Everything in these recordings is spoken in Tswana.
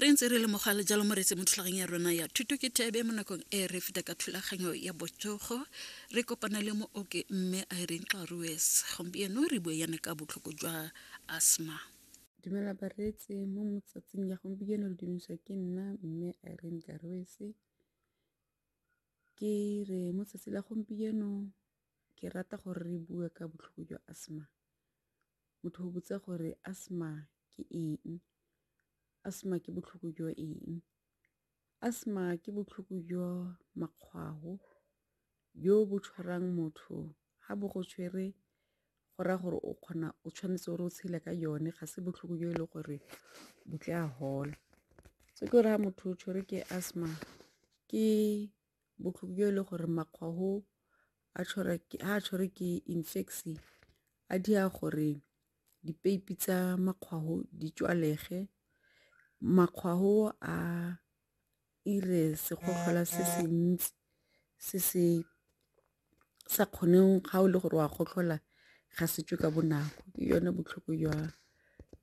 re ntse re lemoga le jalo moretse mo thulaganyong ya rona ya thuto ke thebe mo nakong e re feta ka thulaganyo ya botsogo re kopana le mo oke mme a e reng tlarues gompieno re bue yana ka botlhoko jwa asthma dumela bareetse mo motsatsing ya gompieno le dumiswa ke nna mme a e reng tlarues ke re mo tsatsi la gompieno ke rata gore re bue ka botlhoko jwa asthma Motho o botsa gore asthma ke eng, asthma ke botlhoko jwa eng. Asthma ke botlhoko jwa makgwao jo bo tshwarang motho ga bo go tshwere go raya gore o kgona o tshwanetse o re o tshele ka yone, ga se botlhoko jo e leng gore bo tla gola. Se ke gore ga motho o tshwere ke asthma ke. botlhoko jo e le gore makgwago a tshwara ke ha tshware ke infection a di a gore dipeipi tsa makgwago di tswalege makgwago a ire segotlhola se se ntsi se se sa kgoneng ga o le gore wa gotlhola ga se tswe ka bonako ke yone botlhoko jwa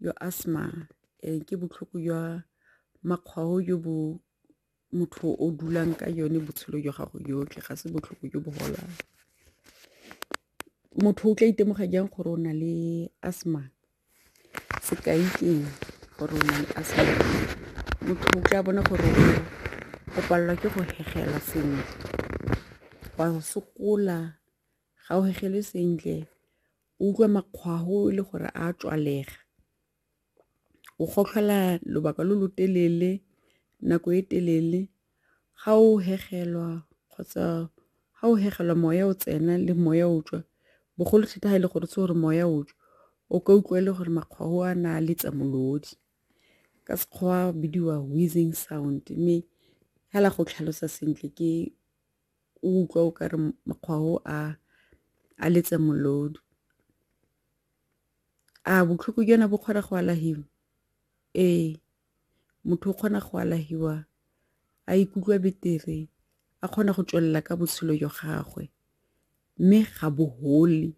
jwa asthma ke botlhoko jwa makgwago jo bo motho o dulang ka yone botshelo jwa gago jotlhe ga se botlhoko jo bo golang. Motho o tla itemoga jang gore o na le asthma, sekai ke eng gore o na le asthma, motho o tla bona gore o palelwa ke go hemela sentle, wa sokola ga o hemele sentle, o utlwa makgwafo e le gore a tswalega. o gotlhola lobaka lo lo telele nako e telele ga o hegelwa kgotsa ga o hegelwa moya o tsena le moya o tswa bogolo thata ga e le gore se gore moya o tswa o ka utlwa e le gore makgwao a na a letsa molodi ka Sekgowa bidiwa wheezing sound mme fela go tlhalosa sentle ke. o utlwa o ka re mokgwa o a a letse molodu a botlhoko jana bo kgona go alahiwa ee motho o kgona go alahiwa a ikutlwa betere a kgona go tswelela ka botshelo jwa gagwe mme ga bo gole.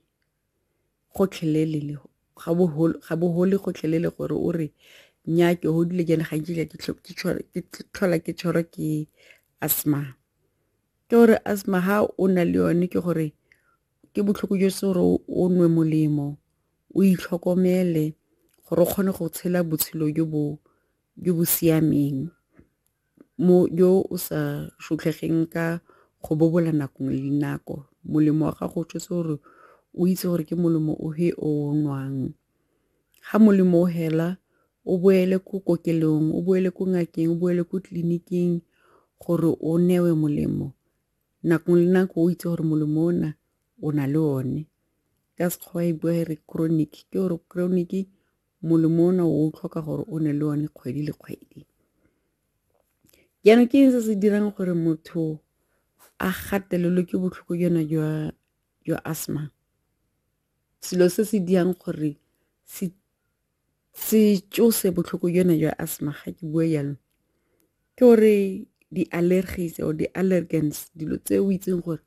gotlhelele ga bohole gotlhelele gore o re nya ke godile ke ne ga nkile ke tlhola ke tshwarwa ke asthma ke gore asthma ha o na le yone ke gore ke botlhoko jo se gore o nwe molemo o itlhokomele gore o kgone go tshela botshelo jo bo jo bo siameng Mo yo o sa shutlhegeng ka go bobola nako le dinako, molemo wa gago o tshotse gore o itse gore ke molemo o he o o nwang. Ga molemo o hela o boele ko kokelong, o boele ko ngakeng, o boele ko tleliniking gore o newe molemo nako le nako o itse gore molemo o na o na le one ka Sekgowa e bua e re chronic ke gore chronic. molemo ona o o tlhoka gore o ne le one kgwedi le kgwedi jaanong ke eng se se dirang gore motho a gatelelwe ke botlhoko jona jwa jwa asthma selo se se dirang gore se se tšose botlhoko jona jwa asthma ga ke bua jalo ke gore di-allergies or di-allergens dilo tse o itseng gore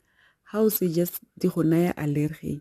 ga o se just di go naya allergy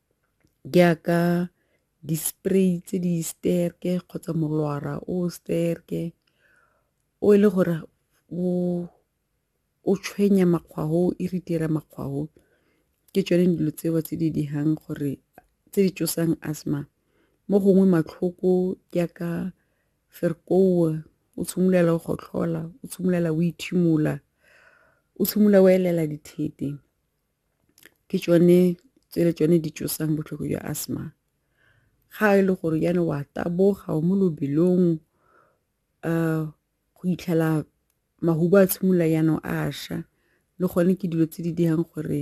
jaaka di-spray tse di sterke kgotsa molora o sterke o e le gore o tshwenya makgwafo, o irritate-a makgwafo ke tsone dilo tseo tse di dirang gore tse di tsosang asthma mo gongwe matlhoko jaaka ferkoa o tshimolola go gotlhola o tshimolola o ethimola o tshimolola o elela dithete. ke tsone tse le tsone di tsosang botlhoko jwa asthma ga e le gore jaana wa taboga o mo lobelong go itlhela mahubu a tshimolola jaanong a ša le gone ke dilo tse di dirang gore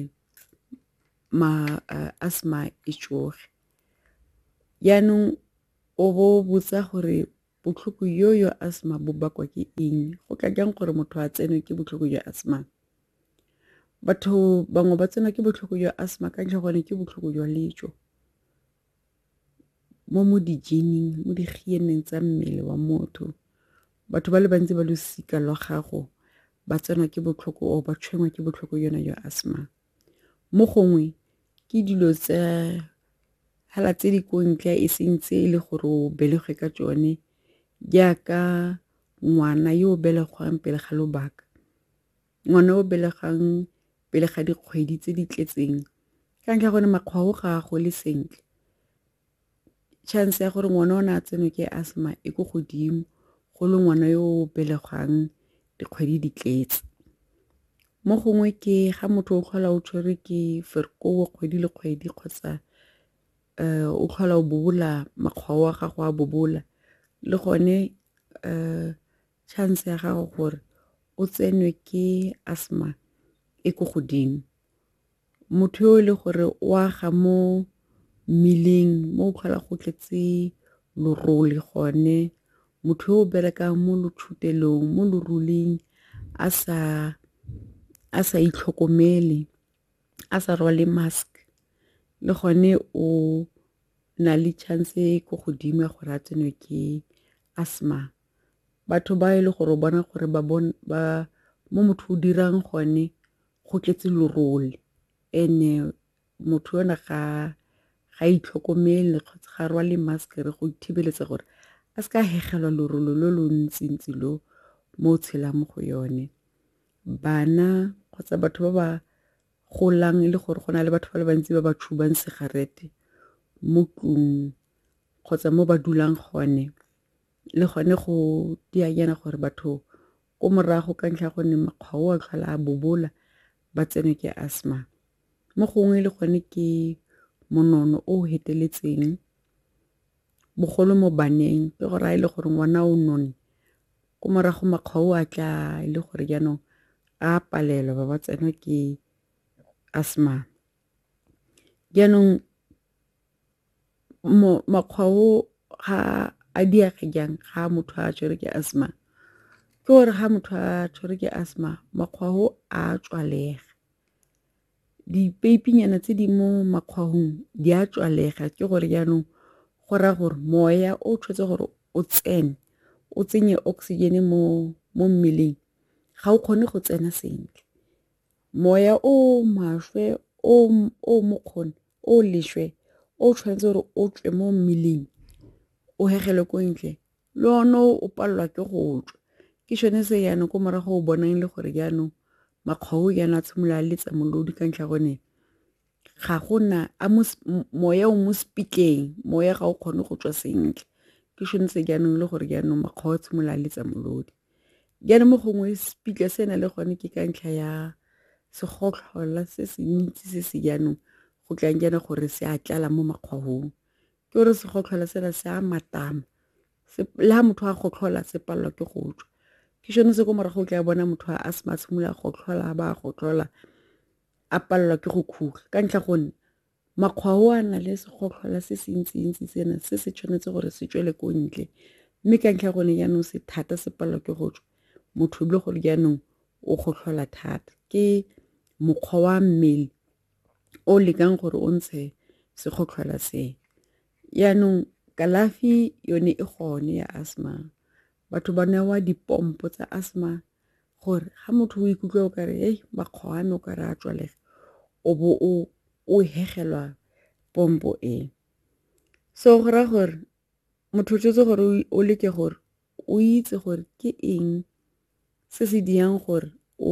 asthma e tsoge jaanong o bo botsa gore botlhoko yo yo asthma bo bakwa ke eng go ka jang gore motho a tsenwe ke botlhoko jwa asthma. Batho bangwe ba tsenwa ke botlhoko jwa asthma ka ntlha ya gore ke botlhoko jwa letso, mo mo di-gene-ing mo di -ing tsa mmele wa motho. Batho ba le bantsi ba losika lwa gago ba tsenwa ke botlhoko or ba tshwenngwa ke botlhoko jona jwa asthma. Mo gongwe ke dilo tsa fela tse di ko ntle e seng tse e le gore o belegwe ka tsone jaaka ngwana yo o belegwang pele ga lobaka. Ngwana o belegang pele ga dikgwedi tse di tletseng ka ntlha ya gore makgwa o ga a gole sentle, chance ya gore ngwana o ne a tsenwe ke asthma e ko godimo go le ngwana yo o belegwang dikgwedi di tletse. Mo gongwe ke ga motho o tlhola o tshwerwe ke ferikoa kgwedi le kgwedi kgotsa o tlhola o bobola makgwao a gago a bobola le gone . Chance ya gago gore o tsenwe ke asthma e ko godimo. Motho yo e le gore o aga mo mmileng mo o tlhola go tletse lorole gone, motho yo o berekang mo lotshutelong mo loruling a sa a sa itlhokomele a sa rwale mask le gone o na le chance e ko godimo ya gore a tsenwe ke asthma. batho ba e le gore o bona gore ba ba mo motho o dirang gone go tletse lerole and-e motho ona ga ga itlhokomele kgotsa ga rwale mask re go ithibeletsa gore a se ka hegelwa lerole lo lo ntsi ntsi lo mo o tshelang mo go yone. Bana kgotsa batho ba ba golang e le gore go na le batho ba le bantsi ba ba tshubang segarete mo tlung kgotsa mo ba dulang gone. le gone go dianyana gore batho ko morago ka ntlha gonne makgwa o a tlhola a bobola ba tsenwe ke asthma mo gongwe le gone ke monono o feteletseng bogolo mo baneng ke gore a e le gore ngwana o none ko morago makgwa o a tla e le gore jaanong a palelwa ba ba tsenwa ke asthma jaanong makgwa o ga a diage jang ga motho a tshwere ke asthma ke gore ga motho a tshwere ke asthma makgwa o a tswalega dipeipinyana tse di mo makgwahong di a tswalega ke gore jaanong go raya gore moya o tshwanetse gore o tsene o tsenye oxygen mo mo mmeleng ga o kgone go tsena sentle moya o maswe o o mokgone o leswe o tshwanetse gore o tswe mo mmeleng o hegelwe ko ntle le one o palelwa ke go tswa ke sone se jaanong ko morago o bonang le gore jaanong makgwao jaana a tshimolola a letsa molodi ka ntlha gone ga gona a moya o mo sepitleng moya ga o kgone go tswa sentle ke sone se jaanong le gore jaanong makgwao a tshimolola a letsa molodi. Jaanong mo gongwe sepitla se na le gone ke ka ntlha ya segotlhola se se ntsi se se jaanong go tlang jaana gore se a tlala mo makgwahong ke gore segotlhola sena se a matama le ga motho a gotlhola se palelwa ke go tswa ke sone se ko morago o tla bona motho a se matshimolola gotlhola ba gotlhola a palelwa ke go khuga ka ntlha gonne Makgwa o a na le segotlhola se se ntsi-ntsi sena se se tshwanetse gore se tswele ko ntle, mme ka ntlha ya gone jaanong se thata se palelwa ke go tswa, motho e le gore jaanong o gotlhola thata. Ke mokgwa wa mmele o lekang gore o ntshe segotlhola se. Jaanong kalafi yone e gone ya asthma, batho ba newa di-pomp-o tsa asthma Gore ga motho o ikutlwa o kare hei makgwao a me o kare a tswalega o bo o o hegelwa pompo e. So go raya gore motho o tshwanetse gore o leke gore o itse gore ke eng se se dirang gore o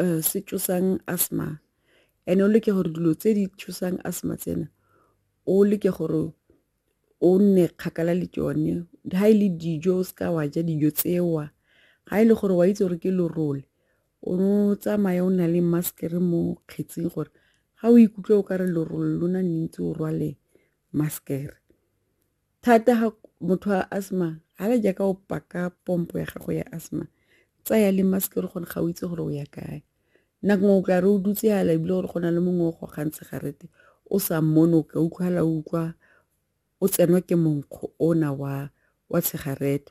eh, se tsosang asthma and o leke gore dilo tse di tsosang asthma tsena o leke gore o nne kgakala le tsone ga e le dijo o seka wa ja dijo tsewa ga e le gore wa itse gore ke lorole o no tsamaye o na le maskere mo kgetseng gore ga o ikutlwe o ka re lorole lona ne ntse o rwale maskere Thata ga motho a asthma ga le jaaka o paka pompo ya gago ya asthma tsaya le mask le gone ga o itse gore o ya kae nako o tla re o dutse ala ebile gore go na le mongwe o gogang tshegarete o sa mmone o ka utlwala o utlwa o tsenwa ke monkgo ona wa wa tshegarete